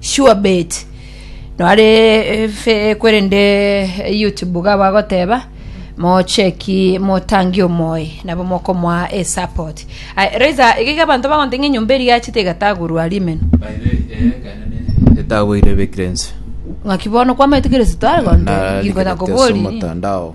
Sure bet nore fake korende YouTube iga bagoteba mocheki motangi omoe nabo mokomoa e support Aye, Raiza iga iga abanto bagonte ng'a enyomba eria yachete egatagurwa rimeno Etagweire ebekire inse. ng'aki bono kwamaete Kristo agontera na rigikonta rigerekete ase kobori omotandao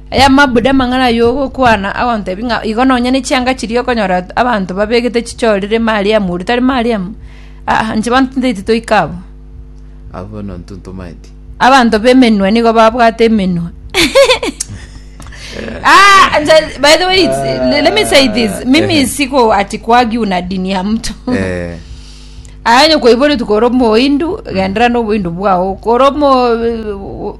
Aya mabuda amang'ana ay'ogokwana agontebia ng'a igo nonya ne chianga chiria okonyora abanto babegete chichorire Mariamu oria tari Mariamu, aa, inche bono tintaeti toika abwo. Abwo bono intwe ntomaeti. Abanto b'emenwa nigo babwate emenwa. ah, nja- by the way, it's- le- let me say this. Mimi siko ati kuagiu na dini ya mtu. Eh, Ayo koibori tukoro moindu gendera no boindu bwao. Koro mo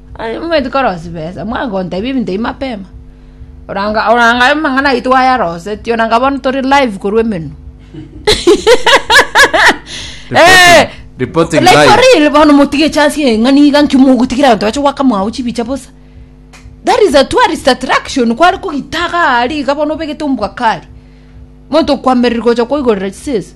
Aye momanyete korosia besa, mwango gontebia ebinto ebi mapema. Oranga oranga aye amang'ana ayio twayarosetie oranga bono tore live korwa emenwa. Eh, Reporting like for live. real bono motige chance ye ng'ani iga nki mogotigira abanto bache goaka mwao chibicha bosa. That is a tourist attraction kware kogitaga ari iga bono obegete ombwakari. Monto okwamerire gocha koigorera chisese.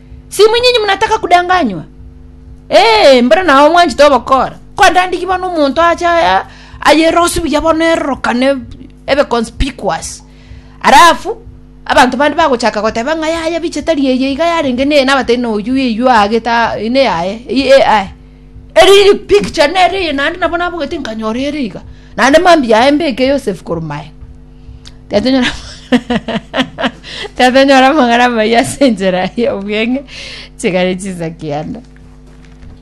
Simunyinyi munataka kudanganywa? Ee, mbero nao mwanchete obokora. Kwandandigwe bono omonto ache aya ayerosi buya bono erorokane ebe conspicuous. Alafu abanto bande bagochaka goteba ng'a yaya biche tari eye iga yarenge neye nabatari na oyio eyio aagete a- ine yaye eye AI. Eri iri picture nere eye naende nabo nabogete nkanyora ere iga. Naende mambia yaye mbeke Yosefu korwa maye. Tatonyora tatonyora amagara amayia ase enchera y'obweng'e chikare chinsa kianda.